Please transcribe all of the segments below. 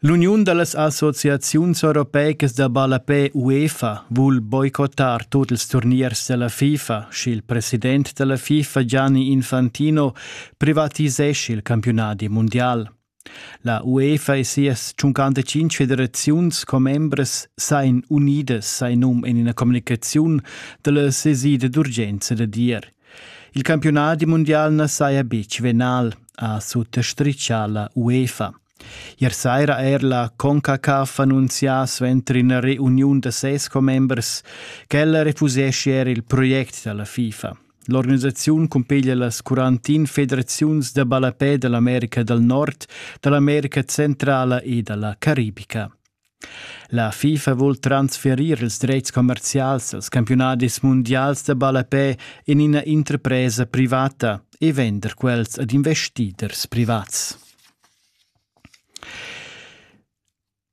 L'uniun da las associaziuns europeicas da ballapè UEFA vul boicottar tut ils turniers da la FIFA, sch'il president da la FIFA Gianni Infantino privatisescha il campiunadi mundial. La UEFA e sias 55 federaziuns commembras sain unidas, sai num en ina communicaziun da la sesida d'urgenza da dir. Il campiunadi mundial na saja betg venal, ha suttastritgà la UEFA. Ier saira ha er la CONCACAF annunzià suenter ina reuniun da ses commembers ch'ella refuseschia er il project da la FIFA. L'organisaziun cumpiglia las 41 federaziuns da ballapè da l'America dal Nord, da l'America Centrala e da la Caribica. La FIFA vul transferir ils dretgs commerzials als campiunadis mundials da ballapè en ina interpresa privata e vender quels ad investiders privats.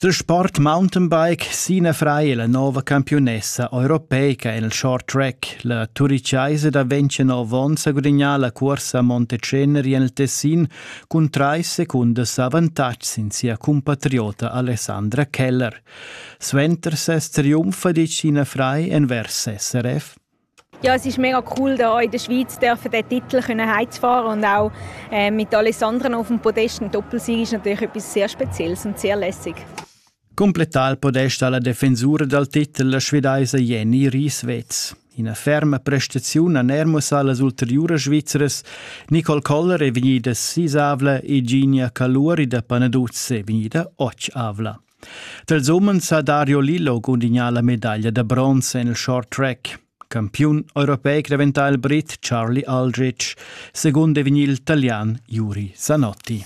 Der Sport Mountainbike Sina Frei è la nova campionessa europeica en il short track. La turichaisa da 29 onns ha gudagnà la cursa Monteceneri en il Tessin cun trais secundas avantatgs sin sia cumpatriota Alessandra Keller. Suenter ses triumf ditg Ina frei envers SRF ja, es ist mega cool, hier in der Schweiz dürfen den Titel können heimzufahren und auch äh, mit Alessandra auf dem Podest eine Doppelsieg ist natürlich etwas sehr Spezielles und sehr lässig. Cumplettà il podest ha la defensura dal titel la svedaisa Jenny Rieswetz. Ina ferma prestaziun han er mussà las ulteriuras Svizras. Nicole Koller è vegnida sisavla e Ginia Caluri da Panaduz è vegnida otg-avla. Tals umens ha Dario Lillo gudignà la medaglia da bronz en il short track. Campiun europeic diventà il brit Charlie Aldrich, secondo è vegnì il italian Juri Zanotti.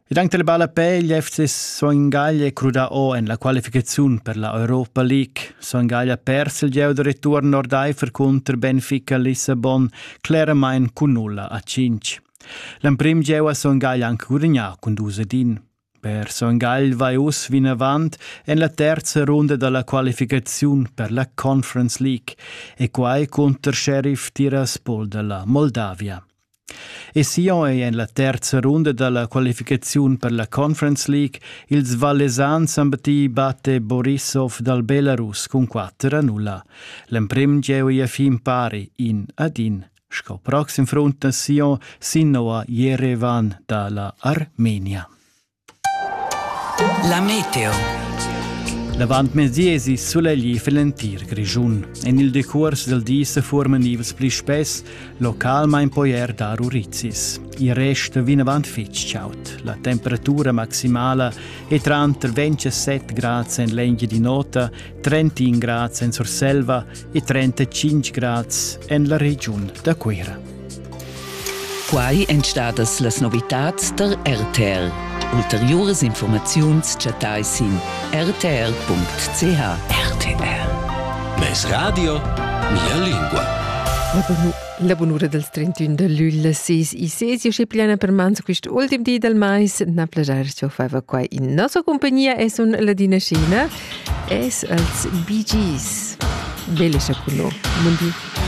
ed anche la balla peglia FC Soingaglia è crudà o en la qualificaziun per la Europa League. Soingaglia persa il gieu da return ordaifer cunter Benfica Lissabon claramain cun nulla a 5. L'emprim gieu ha Soingaglia anche gudagnà cun dus ed in. Per Soingaglia vai uss vinavant en la terza runda da la qualificaziun per la Conference League e quai cunter Sheriff Tiraspol da la Moldavia. E Sion ei en la terza runda dalla qualificaziun per la Conference League. Ils Vallesans han battu Bate Borisov dal Belarus cun 4 a 0. L'emprim gieu ei fin pari in ad in. Sco proxim front da Sion sin Noa Jerevan dalla Armenia. La meteo. L'avantmezdi esi sulegli fil entir Grischun. En il decuors del di se forman ivs pli spess, localmain poi er dar urizis. Il rest vinavant fitg chaud. La temperatura maximala è tranter 27 grads en l'engi di nota, 31 grads en Surselva e 35 grads en la regiun da Cuira. Quai èn stadas las novitads der RTL. Ulteriuras informaziuns chattai sin rtl.ch. RTL. Mes radio, mia lingua. La bunura dals 31 da luglio ses e ses e plena per mans quest ultim di del mais na plagiar cho fava qua in nossa compagnia e sun Ladina Scina Eis els bi gis? Be lescha cu no, mon di.